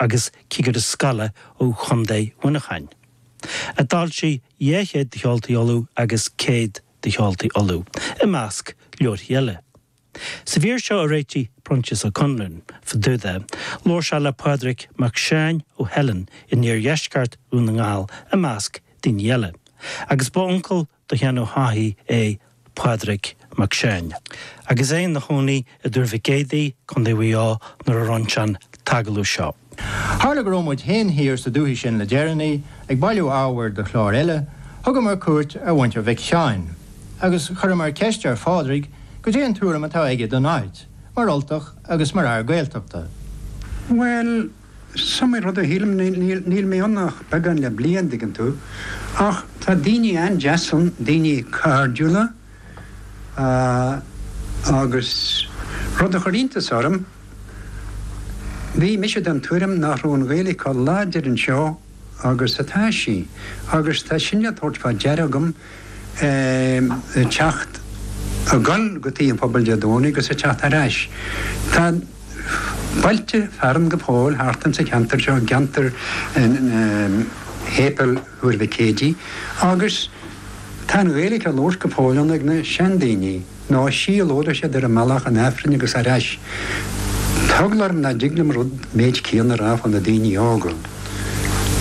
agus cigire scoile ó Chontae Mhuineacháin, a d'fhoilsigh Dhá Chéad de Cheoltaí Uladh agus Céad de Cheoltaí Uladh, i measc leabharthaí eile. Sa mhír seo a réitigh Proinsias Ó Conluain fá dtaobh de, labhair sé le Pádraig Mac Seáin ó Theileann in iardheisceart Dhún na nGall, i measc daoine eile, agus ba uncail do Sheán Ó hEochaidh é Pádraig Mac Seáin, agus é ina chónaí i dTuar Mhic Éadaigh, Co. Mhaigh Eo nuair a rinne sé an t-agallamh seo. Tharla go raibh muid fhéin thiar sa dúthaigh sin le deireanaí, ag bailiú ábhair do chlár eile, thugamar cuairt ar mhuintir Mhic Sheáin, agus chuireamar ceist ar Phádraig, goidé an tuairim atá aige don áit, mar Ultach agus mar fhear Gaeltachta. Bhuel, Is iomaí rud a shílim, níl mé ann ach beagán le bliain, dtuigeann tú, ach tá daoine an-deas ann, daoine cairdiúla agus rud a chuir iontas orm, bhí mise den tuairim nach raibh an Ghaeilge chomh láidir anseo agus atá sí, agus tá sin le tabhairt fá deara agam. ag teacht ag gabháil go tigh an phobail Dé Domhnaigh agus ag teacht ar ais. Tá bailte fearainn go fóill thart insa cheantar seo, i gceantar Shéipéal Thuar Mhic Éadaigh, agus tá an Ghaeilge á labhairt go fóill ann ag na seandaoine. Dá siúlódh siad ar an mbealach chun Aifrinn agus ar ais. Tá eagla orm nach dtig liom rud, méid céanna a rá fá na daoine óga.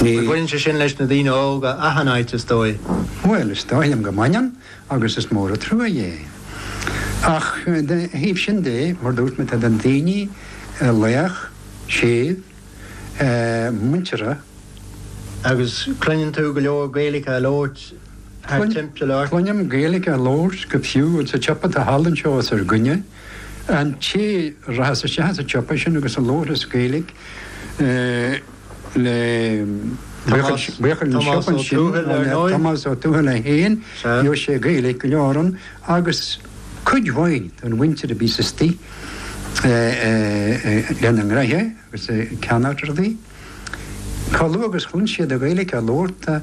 Baineann sé sin leis na daoine óga achan áit, is dóigh. Bhuel, is dóigh liom go mbaineann agus is mór an trua é. Ach de thaobh sin de, mar dúirt mé, tá na daoine lách, séimh, muinteartha. Agus cluineann tú go leor Gaeilge á labhairt. thar timpeall ort. Cluinim Gaeilge á labhairt go fiú sa tsiopa atá thall anseo os ar gcoinne. An té rachas isteach sa tsiopa sin agus a labharfas Gaeilge le buachaill an tsiopa ansin, Tomás Ó Tuathail é fhéin, gheobhas sé Gaeilge go leor ann agus cuid mhaith den mhuintir a bíos istigh lena ngraithe agus ag ceannacht rudaí, chomh luath agus chluin siad an Ghaeilge á labhairt.